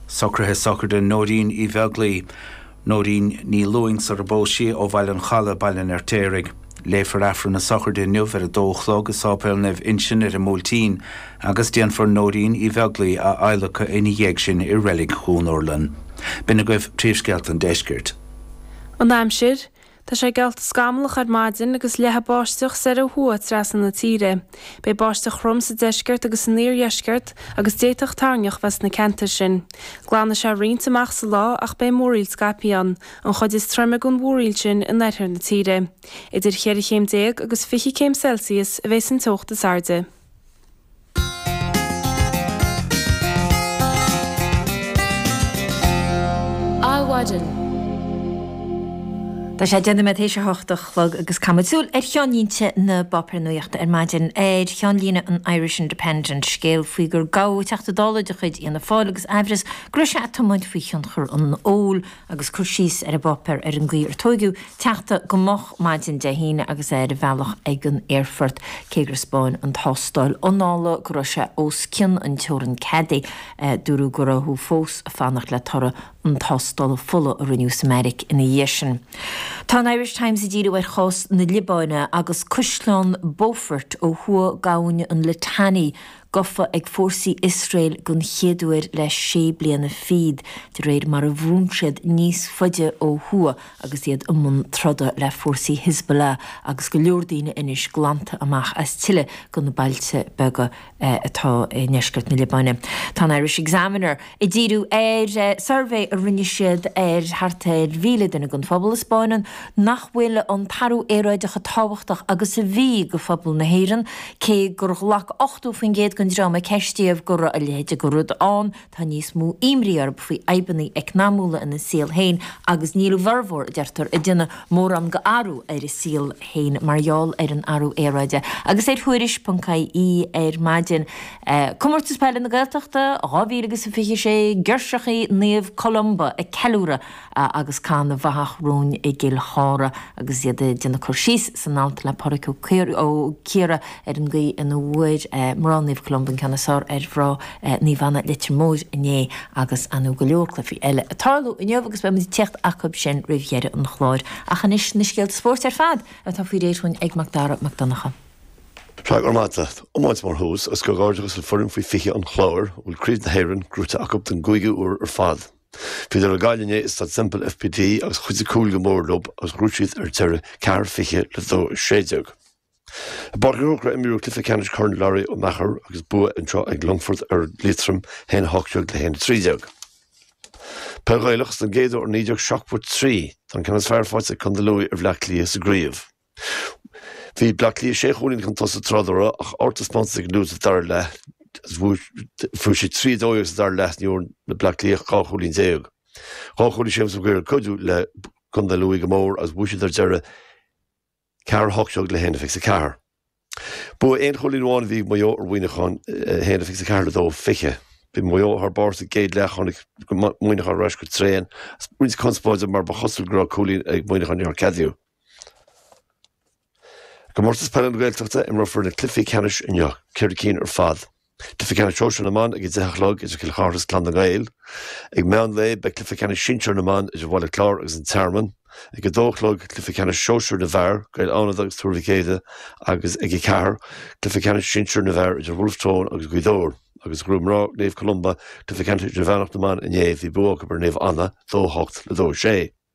Socruithe sochraide Nóirín Uí Bheaglaoi, Nóirín Ní Lúing sarar phós sí ó Bhaile an Chalaidh, Baile an Fheirtéaraigh. Léifear Aifreann na sochraide inniu ar 2 a chlog i Séipéal Naomh Uinseann ar an mBuailtín agus déanfar Nóirín Uí Bheaglaoi a adhlacadh ina dhiaidh sin i Reilig Dhún Urlann. B'in agaibh príomhscéalta an deiscirt. An aimsir, Tá sé geallta scamallach ar maidin agus leathfaidh báisteach soir ó thuaidh trasna na tíre. Beidh báisteach throm sa deisceart agus san iardheisceart agus d'fhéadfadh toirneach bheith sna ceantair sin. Glanfaidh sé roinnt amach sa lá ach beidh múraíl scaipthe ann, an chuid is troime den mhúraíl sin i lár na tíre. Idir cheithre céim déag agus fiche céim Celsius a bheidh sa teocht is airde. Adhmhaidin. Tá sé deich nóiméad tar éis a hocht a chlog agus muid ag caitheamh súil ar cheannlínte na bpáipéar nuachta ar maidin. Ar cheannlíne an Irish Independent, scéal faoi gur gabhadh Teachta Dála de chuid Fhianna Fáil agus amhras go raibh sé ag tiomáint faoi thionchar an óil. agus cur síos ar an bpáipéar ar an gcaoi ar tóigeadh an Teachta go moch maidin Dé hAoine agus é ar a bhealach ag an aerfort, cé gur 'spáin an tástáil anála go raibh sé os cionn an teorainn cheadaithe, dúradh go rabhthas fós ag fanacht le toradh na tástála fola a rinneadh sa mbeairic ina dhiaidh sin. Tá an Irish Times ag díriú ar chás na Liobáine agus Caisleán Beaufort ó thuaidh d'abhainn an Litani Gafa ag fórsaí Iosrael den chéad uair le sé bliana fichead, de réir mar a bhrúnn siad níos faide ó thuaidh agus iad i mbun troda le fórsaí Hizbollah agus go leor daoine anois glanta amach as tuilleadh de na bailte beaga atá i ndeisceart na Liobáine. Tá an Irish Examiner. Ag díriú ar suirbhé a rinne siad ar thart ar mhíle duine den phobal, a 'spáineann nach bhfuil an t-athrú aeráide chomh tábhachtach agus a bhí do phobal na hÉireann, cé gur ghlac 80% den dream a ceistíodh go raibh a leithéid de rud ann. Tá níos mó imní orthu faoi fhadhbanna eacnamúla ina saol féin agus níl a bhformhór, a deirtear, ag déanamh mórán d'athrú ar a saol féin mar gheall ar an athrú aeráide. Agus ar Thuairisc. ie ar maidin. Comórtas Peile na Gaeltachta 2026, girseachaí Naomh Columba ag ceiliúradh agus cath na bhfathach romhainn i gCill Chartha agus iad ag déanamh cur síos san alt le Pádraic Ó Ciardha ar an gcaoi ina bhfuair mná Naomh Columba an ceann is fearr ar mhná Naomh Anna Leitir Móir inné agus ar ndóigh go leor cluichí eile ag tarlú inniu agus beimid ag tíocht chucu sin roimh dheireadh an chláir ach anois na scéalta spóirt ar fad atá faoi réir chugainn ag Macdara Mac Donncha. Go raibh maith agat, iomáint mar thús agus comhghairdeachas le foireann faoi 20 an Chláir a bhfuil craobh na hÉireann gnóthaithe acu don gcúigiú uair ar fad. Bhíodar ar Ghaillimh inné i Staid Semple FBD agus chuidigh cúil go mór leo agus ghnóthaigh siad ar deireadh ceathair fiche le dó sé deag. I bPáirc an Chrócaire a imríodh cluiche ceannais Chorn Larry Ó Meachair agus bua anseo ag Longfort ar Liatroim haon a hocht deag le haon a trí deag. Peil Ghaelach, Is don gcéad uair ó 1973, tá an ceann is fearr faighte ag Condae Lú ar Bhleá Cliath sa gcraobh. Bhí Bleá Cliath sé chúilín chun tosaigh tráth dá raibh ach togha taispeántas ag an Lú sa dara leath agus fuair siad trí dó dhéag sa dara leath ní bhfuair na Bleá Cliathach dhá chúilín déag. Dhá chúilín James Maguire ag cuidiú le contae Lú go mór agus bhuaigh siad ar deireadh ceathair a hocht déag le haon fiche is a ceathair. Bua aon chúilín amháin a bhí ag Maigh Eo ar Mhuineachán 1-24 le 2-20. Bhí Maigh Eo thar barr sa gcéad leath, tháinig Muineachán ar ais go tréan roinnt conspóide mar ba chosúil go raibh cúilín ag Muineachán nár ceadaíodh. I gcomórtas peile na Gaeltachta, imreofar na cluichí ceannais inniu, ceithre cinn ar fad. Cluiche Ceannais Sóisear na mBan ag a deich a chlog idir Cill Chartha agus Clann na nGael. Ag meán lae beidh Cluiche Ceannais Sinsear na mBan idir Bhaile Chláir agus An Tearmann. Ag a dó a chlog Cluiche Ceannais Sóisear na bhFear, Gaeil Fhánada agus Tuar Mhic Éide agus ag a ceathair Cluiche Ceannais Sinsear na bhFear idir Bhulf Tón agus Gaoth Dobhair. Agus ghnóthaigh Mná Naomh Columba, Cluiche Ceannais Idirmheánach na mBan inné bhí bua acu ar Naomh Anna, 2-8 le 2-6.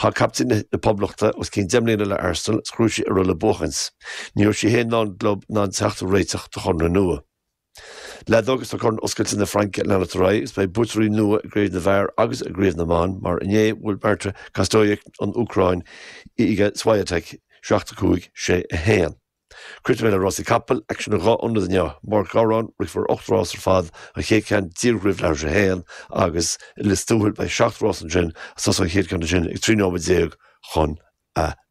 Chaith captaen na Poblachta os cionn deich mbliana le Arsenal is ghnóthaigh sí a raibh le buachaint. Ní raibh sí féin ná an gclub in ann teacht ar réiteach do chonradh nua. Leadóg Is tá Corn Oscailte na Fraince ag leanacht ar aghaidh is beidh buaiteoirí nua i gCraobh na bhFear agus i gCraobh na mBan mar inné bhuail Marta Kostyuk ón Úcráin Iga Swiatek, 7 5, 6 1. Críochnóidh mé le rásaí capaill, aicsean i dhá ionad inniu, i bPáirc Ghabhráin, rithfear ocht rás ar fad, an chéad ceann díreach roimh leathuair tar éis a haon, agus i Lios Tuathail beidh seacht rás ansin, ag tosú an chéad cheann ansin ag trí nóiméad déag chun a dó.